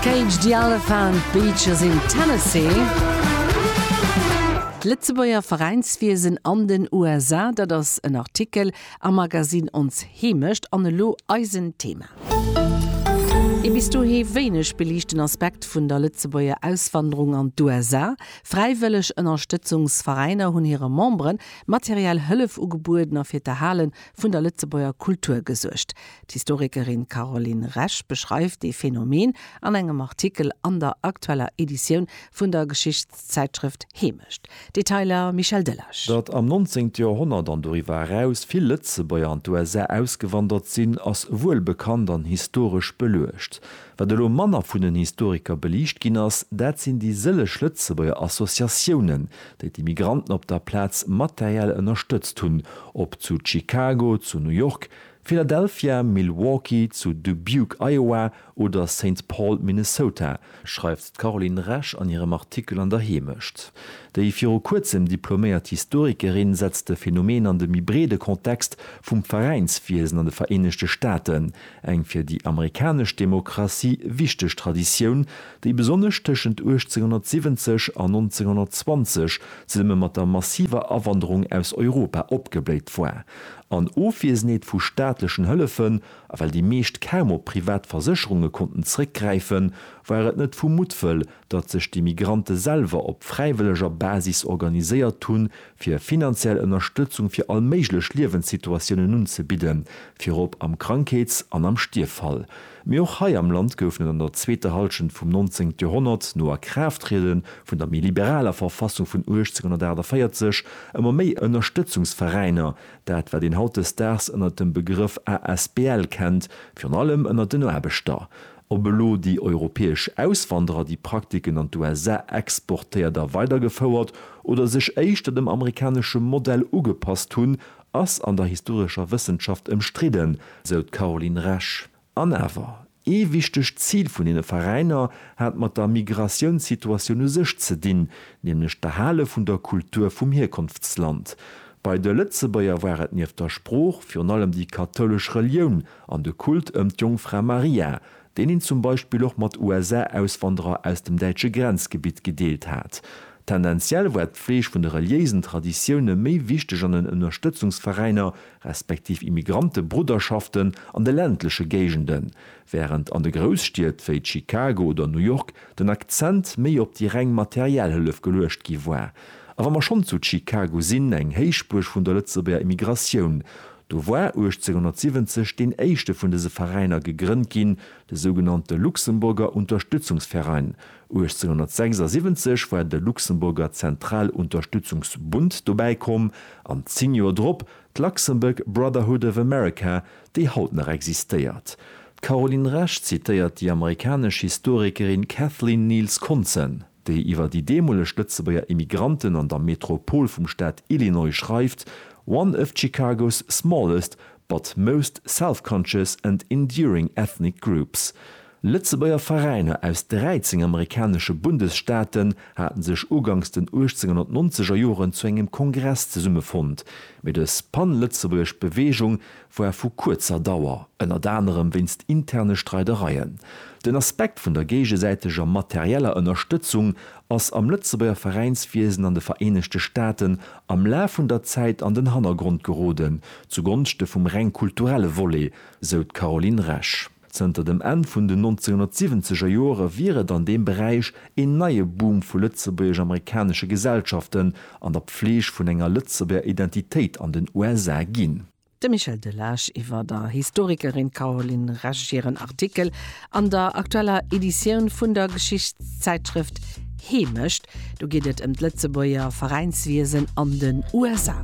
Cage the Elephant, Beaches in Tennessee. D'Lëtzebuerger Veräinswiesen an den USA, dat ass en Artikel am Magazine Ons Heemecht an elo eisen Thema. Ee bis dohi wéineg beliichten Aspekt vun der Lëtzebuerger Auswanderung an d'USA, Fräiwëlleg Ënnerstëtzungsveräiner hunn hire Memberen materiell Hëllef ugebueden a fir d'Erhale vun der Lëtzebuerger Kultur gesuergt. D'Historikerin Caroline Resch beschreift dee Phänomen an engem Artikel an der aktueller Editioun vun der Geschichtszäitschrëft Hemecht. Detailer Michel Delage. Datt am 19. Joerhonnert an doriwwer eraus vill Lëtzebuerger an d'USA ausgewandert sinn, ass wuel bekannt an historesch beluecht. Wat elo manner vun den Historiker beliicht ginn ass, dat sinn déi sëlleg Lëtzebuerger Associatiounen, déi d'Immigranten op der Plaz materiell ënnerstëtzt hunn, ob zu Chicago, zu New York, Philadelphia, Milwaukee, zu Dubuque, Iowa, oder Saint Paul, Minnesota, schreift d'Caroline Resch an hirem Artikel an der Heemecht. Déi viru kuerzem diploméiert Historikerin setzt de Phenomen an de méi breede Kontext vum Veräinswiesen an de Vereenegte Staaten, eng fir déi amerikanesch Demokratie wichteg Traditioun, déi besonnesch tëschent 1870 an 1920 zesumme mat der massiver Awanderung aus Europa opgebléit war. An Ofwiesenheet vu staatlechen Hëllefen, a well déi meescht kaum op privat Versécherunge konnten zréckgräifen, war et net vu Muttwëll, datt sech déi Migrante selwer op fräiwëlleger Basis organiséiert hunn, fir finanziell Ënnerstëtzung fir all méiglech Liewenssituatiounen unzebidden, virop am Krankheets an am Stierffall. Mee och hei am Land goufen et an der zweeter Hallschent vum 19. Joerhonnert, no Akraafttriede vun der méi liberaler Verfassung vun 1848, ëmmer méi Ënnerstëtzungsveräiner, dat wat een hautdesdaags ënner dem Begrëff asbl kennt, virun allem ënner den Aarbechter. Ob elo déi europäesch Auswanderer déi Praktiken an d'USA exportéiert a weidergefouert oder sech éischter dem amerikanesche Modell ugepasst hunn, Ass an der historescher Wëssenschaft ëmstridden, sou d'Caroline Resch. An awer, ee wichtegt Zil vun deene Veräiner hat mat der Migratiounssituatioun u sech ze dinn, nämlech d'Erhale vun der Kultur vum Hierkonftsland. Bei de Lëtzebuerger war et nieft der Sprooch virun allem déi kathoulesch Relioun an de Kult ëm d'Jongfra Maria, deen een zum Beispill och mat USA-Auswanderer aus dem däitsche Grenzgebitt gedeelt hat. Tendenziell war d'Pfleg vun de reliéisen Traditioune méi wichteg an den Ënnerstëtzungsveräiner, respektiv Immigrante-Brudderschaften an de ländleche Géigenden, wärend an de Grousstied wéi Chicago oder New York den Akzent méi op déi reng materiell Hëllef geluecht gi war. A wa mer schonn zu Chicago sinn, eng Héichbuerg vun der Lëtzebuerger Immigratioun, Do war 1870 deen éischte vun dëse Veräiner gegrënnt ginn, de sougenannte Luxemburger Unterstützungsverein. 1876 war de Luxemburger Zentralunterstützungsbund dobäi komm an zéng Joer drop d'Luxembourg Brotherhood of America, déi haut nach existéiert. D'Caroline Resch zitéiert déi amerikanesch Historikerin Kathleen Neels-Konzen. déi iwwer déi deemoleg Lëtzebuerger Immigranten an der Metropol vum Staat Illinois schreift, one of Chicago's smallest but most self-conscious and enduring ethnic groups. Lëtzebuerger Veräiner aus 13 amerikanesche Bundesstaaten haten sech ugangs den 1890er Joren zu engem Kongress zesummefonnt, mee dës pan-lëtzebuergesch Beweegung war vu kuerzer Dauer, ënnert anerem wéinst interne Streidereien. Den Aspekt vun der géigesäiteger materieller Ënnerstëtzung ass am Lëtzebuerger Veräinswiesen an de Vereenegte Staaten am Laf vun der Zäit an den Hannergrond geroden, zu Gonschte vum reng kulturelle Volet, sou d'Caroline Resch. Zënter dem Enn vun den 1970er Jore wier et an deem Beräich een neie Boom vu lëtzebuergesch-amerikanesche Gesellschaften an der Pfleeg vun enger Lëtzebuerger Identitéit an den USA ginn. De Michel Delage iwwer der Historikerin Caroline Resch hiren Artikel an der aktueller Editioun vun der Geschichtszäitschrëft Heemecht. Do geet et ëm d'Lëtzebuerger Veräinswiesen an den USA.